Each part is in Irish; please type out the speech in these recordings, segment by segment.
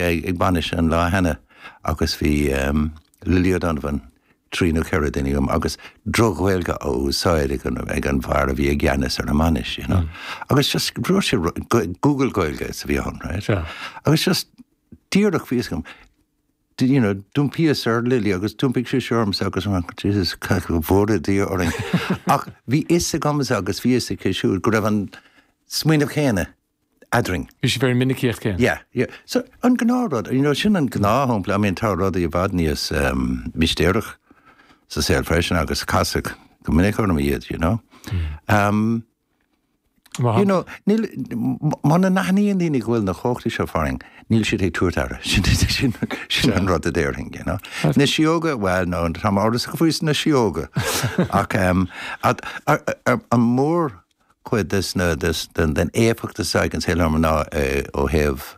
ag bainis an lá cheana agus bhí Lily O'Donovan, trí nó ceithre duine liom agus droch-Ghaeilge á úsáid ag an bhfear a bhí i gceannas ar an mbainis, you know, agus just dúirt sé Google Gaeilge is a bhí ann, right? Agus just díreach bhíos ag, you know, d'iompaíos ar Lily agus d'iompaigh sí ormsa agus an Jesus, cad go bhfuair a dtí orainn. Ach bhí a fhios agam agus bhí a fhios aici siúd go raibh an smaoineamh céanna eadrainn. Bhí sí very minicíocht. Yeah, yeah. So, an gnáthrud, you know, sin an gnáthshampla, I mean, tá rudaí i bhfad níos mistéireach sa saol freisin agus casadh go minic orm iad, you know. Um, Mar you know, níl, muna n-aithníonn daoine go bhfuil na cumhachtaí seo farainn, níl siad ag tabhairt aire. Sin, sin, sin an rud a déarfainn, you know. Na sióga, well, no, tá mé amhrasach faoi na sióga. Ach, um, at, ar, ar, ar, an mór, cuid des na, den éifeacht a d'fhag an saol orm ná ó thaobh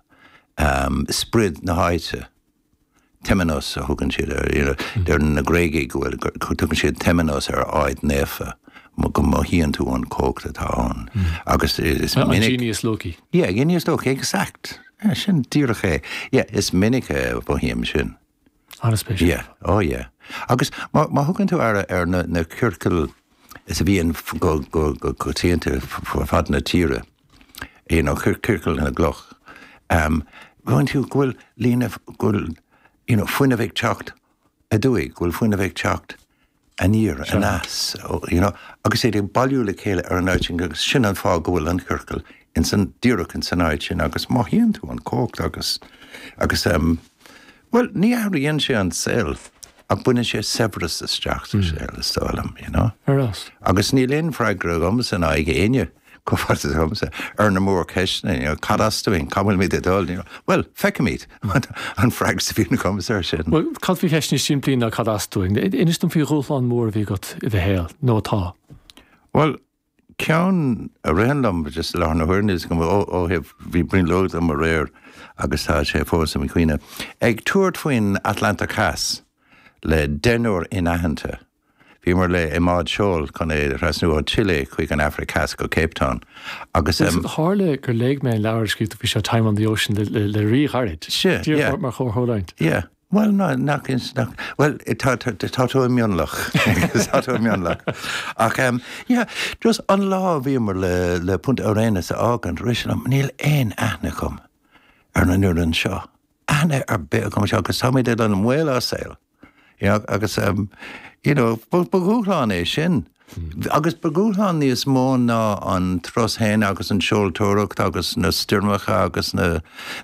sprid na háite. Temenos a thugann siad air, you know, deireann na Gréagaigh go bhfuil, tugann siad Temenos ar áit naofa, go mothaíonn tú an chumhacht atá ann. Agus is minic. An genius loci. Yeah, genius loci, exact. Yeah, sin díreach é. Yeah, is minic a mhothaím sin. Yeah, oh yeah. Agus má thugann tú aire ar na ciorcail seo a bhíonn go coitianta fud fad na tíre, you know, ciorcail na gcloch, ehm, feiceann tú go bhfuil líne, go bhfuil, you know, fuinneamh ag teacht aduaidh, go bhfuil fuinneamh ag teacht aniar, aneas, you know, agus iad ag bailiú le chéile ar an áit sin agus sin an fáth go bhfuil an ciorcal ins an, díreach ins an áit sin agus mothaíonn tú an chumhacht agus, agus ehm, bhuel, ní athraíonn sé an saol ach baineann sé saibhreas isteach sa hmm. saol, is dóigh liom, you know. Ar fhás. Agus níl aon freagra agam le haghaidh éinne. freagra agamsa ar na mórcheisteanna, you know, cad as dúinn, cá bhfuil muid ag dul, you know, bhuel, feicfimid, an freagra a bhíonn agamsa ar sin. Bhuel, cad faoi cheist níos simplí ná cad as dúinn? Inis dom faoi dhúshlán mór a bhí agat i do shaol, nó atá. Bhuel, ceann a ritheann liom just i láthair na huaire ó thaobh bhí brionglóid agam aréir agus tá sé fós im chuimhne. Ag tabhairt faoin Atlantach Theas le deichniúr inaitheanta. Bhíomar le i mbád seoil chun é a thrasnú ó Chile chuig an Afraic Theas go Cape Town agus é. Agus tharla gur léigh mé an leabhar a scríobh tú faoi seo, Time on the Ocean, le fíorghairid. Sea, yeah. mar chomhtharlúint. Yeah. Bhuel, ná, nach ins, nach, bhuel, tá, tá, tá tú i mionlach. tá tú i mionlach. Ach, um, yeah, just an lá a bhíomar le, le Punta Arenas a fhágaint, rith sé liom, níl aon aithne agam ar na naonúr anseo. Aithne ar bith acu seo, agus táimid ag dul i mbaol ár saol. Eag, agus ehm, you know, ba, ba dhúshlán é sin. Agus ba dhúshlán níos mó ná an turas féin agus an tseoltóireacht agus na stoirmeacha agus na,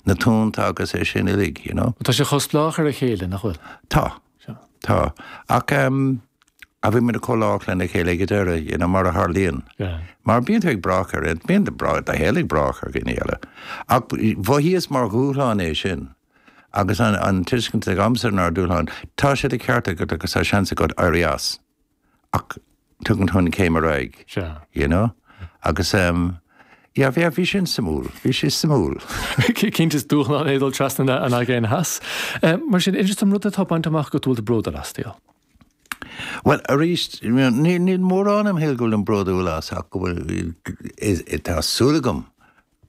na tonnta agus é sin uilig, you know. Tá sibh chomh spleách ar a chéile, nach bhfuil? Tá. Sea. Tá. Ach ehm, a bhí muid chomh lách lena chéile ag an deireadh, you know, mar a tharlaíonn. Yeah. Mar bíonn tú ag brath ar, bíonn do brách, do shaol ag brath ar dhaoine eile. Ach b- mhaíos mar dhúshlán é sin. agus an tuiscint ag am san ar dúshlán, tá sé de cheart agat agus tá seans agat éirí as, ach tugann tú an céim ar aghaidh. Sea. You know? Agus ehm, yeah, bhí, bhí sin suimiúil, bhí sé suimiúil. Cinnte is dúshlán é dul trasna na, an Aigéan Theas. Eh, mar sin, is aon rud atá bainte amach agat go bhfuil tú bródúil as, Dale? Bhuel, arís, níl, níl mórán im shaoil go bhfuil mé bródúil as ach go bhfuil, is, tá súil agam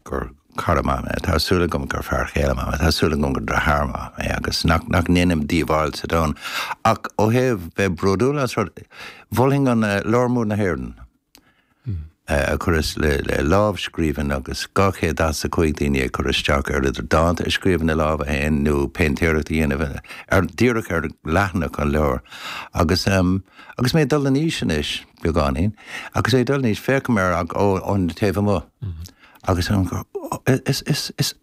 gur cara maith mé, tá súil agam gur fear chéile maith mé, tá súil agam gur deartháir maith mé agus nach ndéanaim díobháil sa domhan. Ach ó thaobh bheith bródúil as rud, b'fhéidir an Leabhar Mór na hÉireann, a chuireas le, lámhscríbhinn agus 245 daoine ag cur isteach ar idir dánta a scríobh ina lámha féin nó péintéireacht a dhéanamh díreach ar leathanach an leabhair. Agus mé ag dul in aois anois. beagáinín, agus ag dul in aois féachaim air ón taobh amuigh, agus an is is is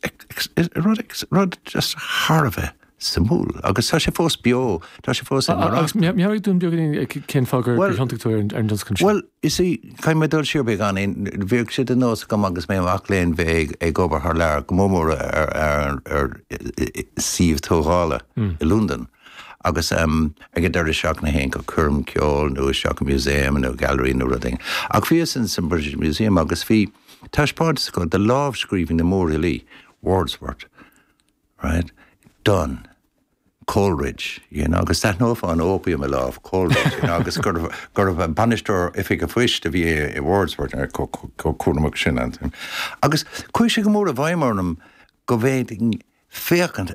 is rud rud just thar a bheith suimiúil, agus tá sé fós beo, tá sé fós ag marach. Agus meabhraigh dúinn beagáinín ag cén fáth gur gur thiontaigh tú ar an ar an tionscnamh seo. Bhuel, you see, caithfidh mé dul siar beagáinín, bhíodh sé de nós agam agus mé mac léinn bheith ag ag obair thar lear go mór mór ar ar ar suíomh tógála i Londain, agus ag an deireadh seachtaine théinn go coirm ceoil nó isteach i museum nó gallery nó rud éigin. Ach bhíos in san British Museum agus bhí taispeántas acu de lámhscríbhinní na mórfhilí, Wordsworth, right, Donne, Coleridge, you know, agus d'aithneofá an opium i lámh Coleridge, you know, agus gurb bainisteoir oifig an phoist a bhí i Wordsworth ar chomh cúramach sin. Agus chuaigh sé go mór i bhfeidhm orm go bhféadfainn féachaint